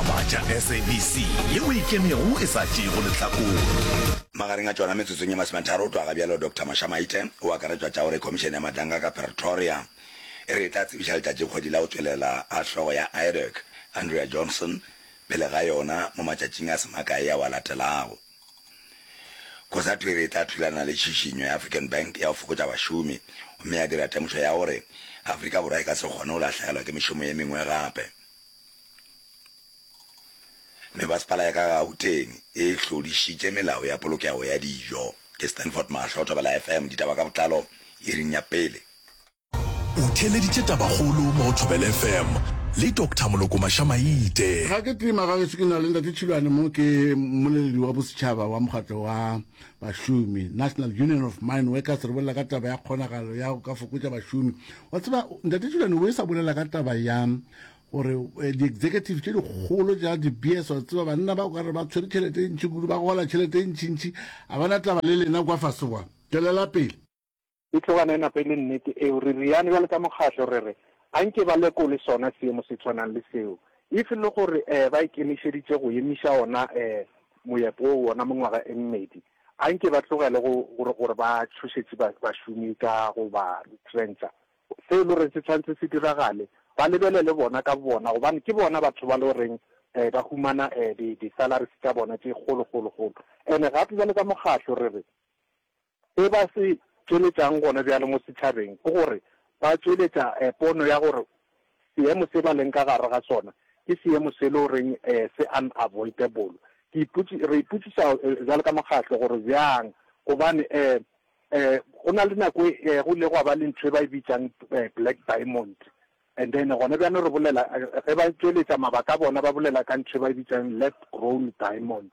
Ba tša SABC ye o ikemego e sa tšeego lehlakore. Magareng a tšona, metsotsong ye masometharo o tloga ga bjalo, Doctor Mosha Maite o akaretšwa tša gore Khomišene ya Madlanga ka Pretoria e re e tla tsebiša letšatši kgwedi la go tšwelela a hlogo ya IREC, Andrea Johnson, pele ga yona mo matšatšing a se makae ao a latelago. Cosatu e re e tla thulana le tšhišinyo ya African Bank ya go fokotša bašomi gomme ya dira temošo ya gore Afrika Borwa e ka se kgone go lahlegelwa ke mešomo ye mengwe gape. Mme Masepala ya ka Gauteng e hlodišitše melao ya polokego ya dijo. Ke Stanford Mahlo, Thobela FM, ditaba ka botlalo iring ya pele. O theeleditše tabakgolo mo go Thobela FM le Doctor Moloko Mašamaite. Ga ke tima ga geso ke na le Ntate Tšhilwane mo ke mmoleledi wa bosetšhaba wa mokgatlo wa bašomi National Union of Mine Workers re bolela ka taba ya kgonagalo ya go ka fokotša bašomi wa tseba Ntate Tšhilwane o e sa bolela ka taba ya gore eh, di-executive tše dikgolo ja di-beers wa tseba banna ba kare ba tshwere tšhelete e ntšhi kudu ba gola tšhelete e ntšhintšhi a bana taba le lena kwa fase kwa tswelela pele e tlogana e napa e le nnete eo re riane bjale ka mokgatlho re re a nke ba lekole sona seemo se tshwanang le seo if e le gore um ba ikemišeditše go emiša ona um moepo o ona mengwaga e mmedi a nke ba tlogele gore ba tšhošetše bašomi ka go ba retrentsha Se e le goreng se tshwanetse se diragale, ba lebelele bona ka bobona gobane ke bona batho ba le goreng um ba humana um di di-salaries tša bona tše kgolo kgolo kgolo. And-e gape bjalo ka mokgatlo re re se ba se tšweletšang gona bjale mo setšhabeng ke gore ba tšweletša um pono ya gore seemo se ba leng ka gare ga sona ke seemo se e le goreng um se unavoidable. Ke re ipotšiša bjalo ka mokgatlo gore bjang gobane um Go na le nako e go ile gwa ba le ntho e ba e bitšang Black Diamond and then gona bjano re bolela ge ba tšweletša mabaka a bona ba bolela ka ntho e ba e bitšang lab grown diamond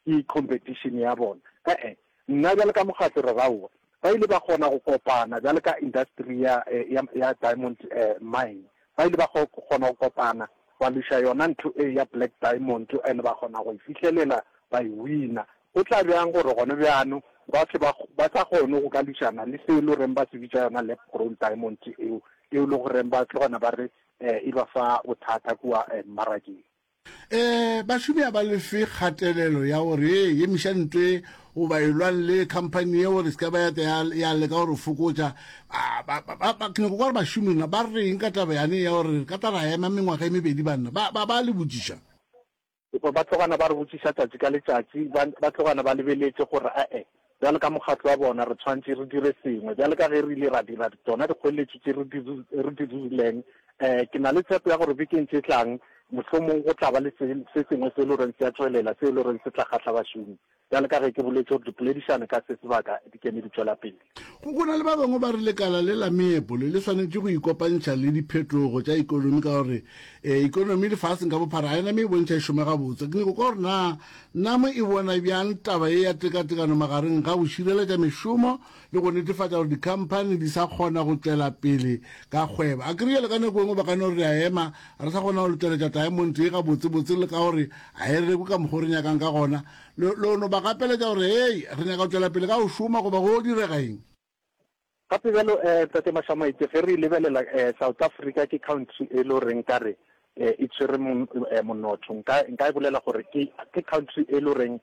ke competition ya bona ee nna bjale ka mokgatlo re ra owa ba ile ba kgona go kopana bjale ka industry ya ya ya diamond mine Ba ile ba kgona go kopana ba luša yona ntho e ya Black Diamond and ba kgona go e fihlelela ba e wina. Go tla bjang gore gone bjano ba se ba sa kgone go ka lušana le se e le goreng ba se bitša yona lab grown diamonds eo, eo le goreng ba tlo gona ba re e ba fa bothata kua mmarakeng. E, bašomi ga ba lefe kgatelelo ya gore e emiša ntwe goba e lwang le khamphani ye gore se ka ba ya tla ya- ya leka gore fokotša Ah, ba- ba- ba- ba- ke nyako kwa gore bašomi na ba reng ka taba yane ya gore re ka tla ra ema mengwaga e mebedi banna ba ba- ba le botšiša Epa ba tlogana ba re botšiša tšatši ka letšatši, ba ba tlogana ba lebeletše gore ae, Bjalo ka mokgatlo wa bona, re tshwanetše re dire sengwe. Bjalo ka ge re ile ra dira tsona dikgoeletšo tše re di, re di dirileng, eh, ke na le tshepo ya gore bekeng tše tlang mohlomong go tla ba le se, se sengwe se e le goreng se a tšwelela, se e le goreng se tla kgahla bašomi. Bjalo ka ge ke boletše gore dipoledišano ka se sebaka di keme di tšwela pele. Go, go na le ba bangwe ba re lekala le la meepole le swanetše go ikopantšha le diphetogo tša ekonomi ka gore, eh, ekonomi lefaseng ka bophara ga e na me e bontšha e šoma gabotse. Ke nyoko kwa gore na Na mo e bona bjang taba ye ya tekatekano magareng ga go šireletša mešomo le go netefatša gore dikhamphani di sa kgona go tšwela pele ka kgwebo? Akere bjale ka nako e nngwe ba ka no re re a ema, re sa kgona go letšweletša taemonte ye gabotsebotse le ka gore ga e rekwe ka mokgwa o re nyakang ka gona. Lo no ba gapeletša gore, Hei, re nyaka go tšwela pele ka go šoma goba go direga eng? Gape bjalo eh Tate Mashamaetše ge re e lebelela eh South Africa ke country e le gore nkare eh e tshwere mo eh monotho nka nka e bolela gore ke ke country e le gore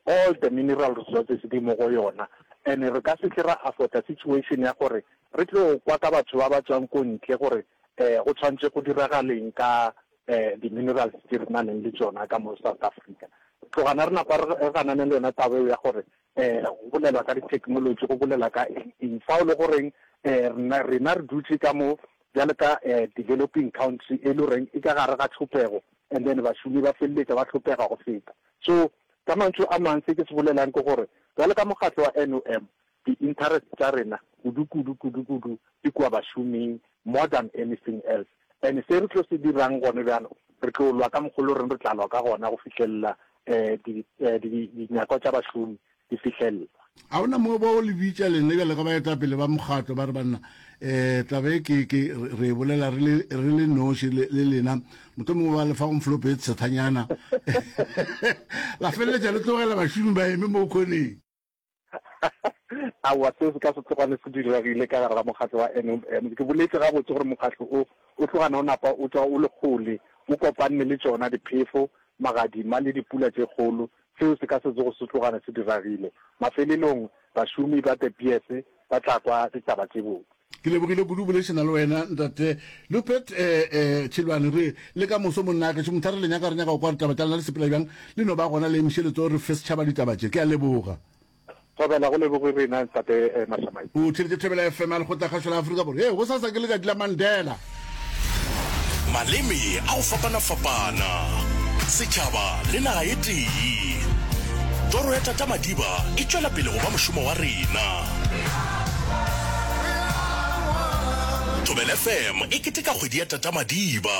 all the mineral resources di mo go yona and re ka se tle ra afford a situation ya gore re tlo kwa ka batho ba ba tswang ko ntle gore eh go tshwantse go diragaleng ka eh di minerals tse re nang le tsona ka mo South Africa. Tlogana re napa re ganane le yona taba ya gore Go bolelwa ka ditheknolotši go bolela ka eng fao le goreng rena re dutše ka mo bjale ka developing country e le goreng e ka gare ga tšhopego and then bašomi ba feleletša ba hlopega go feta. So ka mantšu a mang se ke se bolelang ke gore bjale ka mokgatlo wa NOM di interest tša rena kudu kudu kudu kudu di kua bašoming more than anything else. And se re tlo se dirang gone bjalo, re tlo lwa ka mokgwa o le goreng re tla lwa ka gona go fihlelela dinyakwa tša bašomi di fihlellwa. A go na moo ba o le bitša lena bjale ga baetapele ba mokgatlo ba re, Banna, taba ye ke, ke, re e bolela re le, re le noši le, le lena. Mohlomongwe ba le fa go mflope tshethanyana la feleletša le tlogela bašomi ba eme moo khoneng. Aowa, seo se ka se tlogale se diragile ka gare ga mokgatlo wa NOM. Ke boletše gabotse gore mokgatlo o, o tlogana o napa o tšwa o le kgole, o kopanne le tšona diphefo, magadima le dipula tše kgolo. Seo se ka se tsoge se tlogale se diragile. Mafelelong, bašomi ba De Beers ba tla kwa ditaba tše botse. Ke lebogile kudu boledišana le wena ntate Lupet eh, eh, Tšhilwane re le ka moso monnake tšhe mothare le nyaka re nyaka go kwa ditaba tša lena le sepela bjang le no ba gona le emše letso re fe setšhaba ditaba tše ke a leboga Thobela go leboge rena ntate eh, Mashamai. O theletše Thobela FM ya Lekgotlakgašo la Afrika Borwa. Ee, go sasa ke letšatši la Mandela. Maleme a go fapana-fapana, setšhaba le naga e tee. Toro ya Tata Madiba e tšwela pele go ba mošomo wa rena. Thobela FM e keteka kgwedi ya Tata Madiba.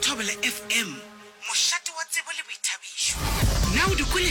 Thobela FM, mošate wa tsebo le boithabišo. Na o di kwele?